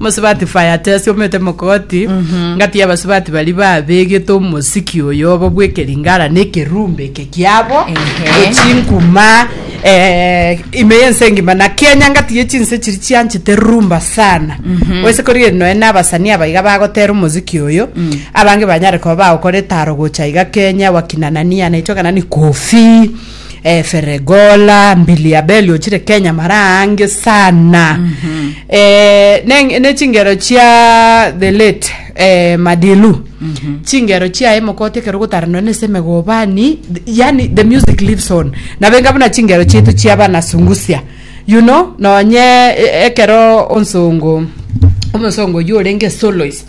Omosubati Fayato asiomete mogoti, ngatiga abasubati baria babegete omosiki oyo obo bw'ekeringara na ekerumbe eke kiabo, ne chinkuma eh, ime y'ense engima, na Kenya ngatiga echinse chiria chianchete rumba sana. Oise korigereria nonya na abasanii aba iga bagotera omosiki oyo, abange banyare koba bagokora etaro gocha iga Kenya, wakina nani anaitwa ng'a nani Koffee, Efere gola mbili ya beli ochire kenya mara ange sana eh, neng- ne chingero chia the late eh, madilu chingero chiaye mokote ekero gotaranwa nese megobani th- yani the music lives on nabenga buna chingero chietu chia bana sungusia you know nonye eh, ekero onsongo omosongo oyio orenge soloist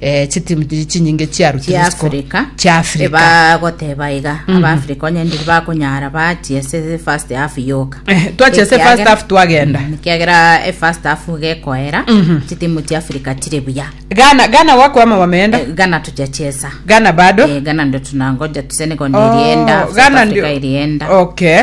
eh, chitimu chiri chinyinge chiarutirwe chia isiko Africa chia Africa bagoteba iga aba Africa onye ndiri bakonyara bachie ase first half yoka Eh, twachia ase Ekiagera- first half twagenda. Mm, ekiagera e first half gekoera chitimu chia Africa chire buya Ghana Ghana wakwama wameenda Eh, Ghana tujachesa Ghana bado Eh, Ghana ndo tunangoja tusene kondo Oh, irienda South Ghana Africa ndio- irienda okay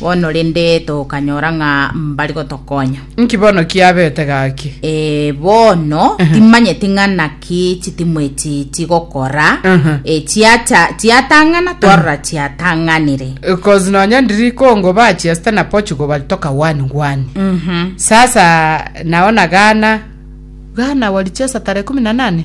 Bono rende tokanyora ng'a mbari gotokonya. Nki bono kiabete gaki? Eh, bono timanyeti ng'a naki chitimwa echi chigokora Aha. Eh, chiacha chiatang'ana twarora chiatang'anire Because nonya ndiri Congo bachiesta na Portugal balitoka one one. Mhm. Sasa naona Ghana Ghana walichesa tarehe kumi na nane